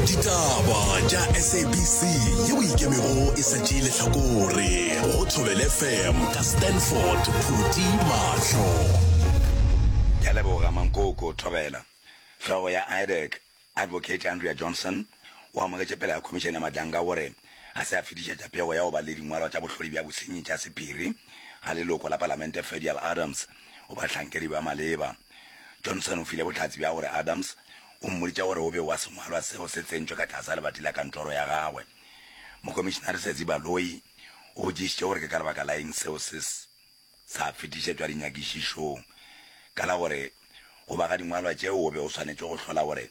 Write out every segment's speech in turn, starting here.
ditaba tša sabc yeo ikemego e sa tšee lehlakore go thobele fm ka stanford phuti mahlo ke leboga mankoko thobela hlogo ya idec advocate andrea johnson o amogetše pela ya khomišene ya madlanga o re ga se a fetišetša pego ya go ba le dingwalwa tša bohlodi bja bosenyi tša sephiri ga leloko la palamente fedial adams go bahlankedi ba maleba Johnson o file bohlatse bja gore Adams o mmoditše gore o be wa sengwalwa seo se tsentšwe ka tlase ga lebati la kantoro ya gagwe. Mokomišinare Sezi Baloyi o botšišitše gore ke ka lebaka la eng seo se sa fetišetšwa dinyakišišong ka la gore go ba ga dingwalwa tšeo o be o swanetše go hlola gore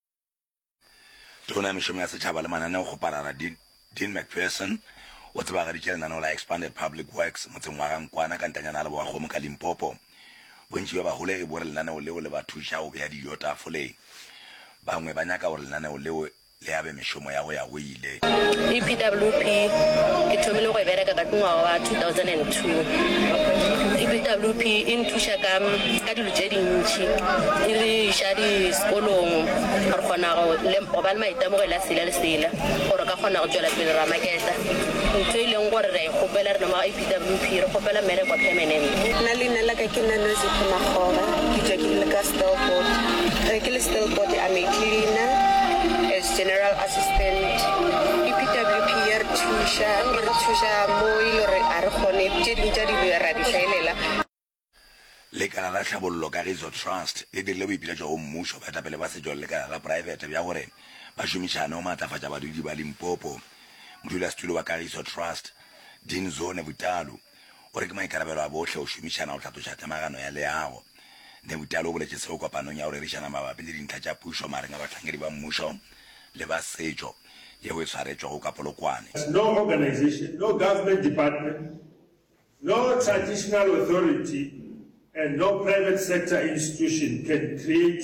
Tona ya Mešomo ya Setšhaba le Mananeo go Parara Dean Dean McPherson o tsebagaditše lenaneo la Expanded Public Works motseng wa ga Nkwana ka ntanyana ya Lebowakgomo ka Limpopo. Bontši bja baholegi bo re lenaneo leo le ba thuša go bea dijo tafoleng. Bangwe ba nyaka gore lenaneo leo le abe mešomo ya go ya go Tlile. EPWP Ke thomile go e bereka ka ngwaga wa 2002. EPWP e nthuša ka ka dilo tše dintši, e re iša disekolong re kgona go le- go ba le maitemogelo a sela le sela gore re ka kgona go tšwela pele ra maketa ntho e leng gore re a e kgopela rena mo EPWP, re kgopela mmereko permanent. Nna leina la ka ke Nanozipho Makgoba, ke tšwa ke le ka Stelford. Ge ke le Stelford, I'm a cleaner. General Assistant, EPWP ya re thuša, e re thuša mo e le gore ga re kgone, tše dingwe tša dilo ra di hlaelela. Lekala la Tlhabollo Kagiso Trust le dirile boipiletšo go mmušo, baetapele ba setšo le lekala la poraefete bja gore ba šomišane go maatlafatša badudi ba Limpopo. Modulasetulo wa Kagiso Trust, Dean Zone Vutalu, o re ke maikarabelo a bohle go šomišana go hlatloša temagano ya leago. Nebutalo o boletše seo kopanong ya go rerišana mabapi le dintlha tša pušo magareng ga bahlankedi ba mmušo le ba setšo yeo e swaretšwego ka Polokwane. No organization, no government department, no traditional authority and no private sector institution can create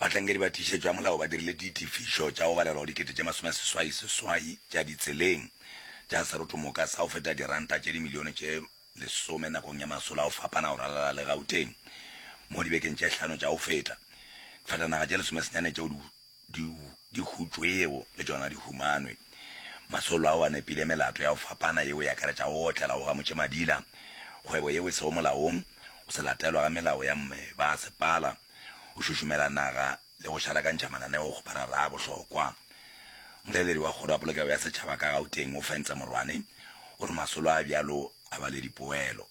Bahlankedi ba tiišetšo ya molao ba dirile ditefišo tša go balelwa go dikete tše masome a seswai seswai tša ditseleng tša serotomoka sa go feta diranta tše dimilione tše lesome nakong ya masolo a go fapana go ralala le Gauteng mo dibekeng tše hlano tša go feta. Difatanaga tše lesomesenyane tšeo di Di, di hutšwe yeo, le tšona di humanwe. Masolo ao a nepile, melato ya go fapana yeo e akaretša go otlela, go gamotše madila, kgwebo yeo e sego molaong, go se latelwa ga melao ya mme ba sepala, go šušumela naga le go šalakantšha mananeo go barara a bohlokwa. Molaeleri wa Kgoro ya Polokego ya Setšhaba ka Gauteng o fentse morwane, o re masolo a bjalo a ba le dipoelo.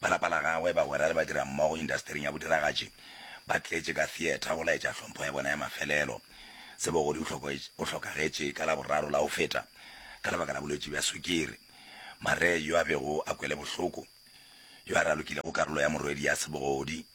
Ba lapa la gagwe, bagwera le badirammogo indasetering ya bodiragatši ba tletše ka theatre go laetša hlompho ya bona ya mafelelo. Sebogodi o hlokagetše ka Laboraro la go feta ka lebaka la bolwetši bja sukiri. Maree yo a bego a kwele bohloko, yo a ralokilego karolo ya morwedi ya Sebogodi,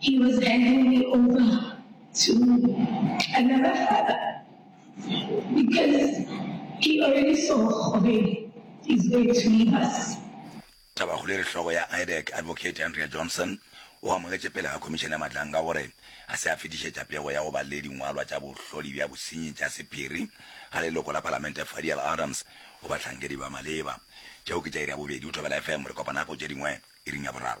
He was handing me over to another father because he already saw gore he's going to leave us. Tabahuleri hlogo ya IDEC, Advocate Andrea Johnson, o amogetše pele ga Khomišene ya Matlanga gore ga se a fetišetša pego ya go ba le dingwalwa tša bohloli bja bosenyi tša sephiri ga leloko la Palamente Fadiel Adams go bahlankedi ba maleba. Tšeo ke tša iri ya bobedi. O thobela FM. Re kopana nako tše dingwe iring ya boraro.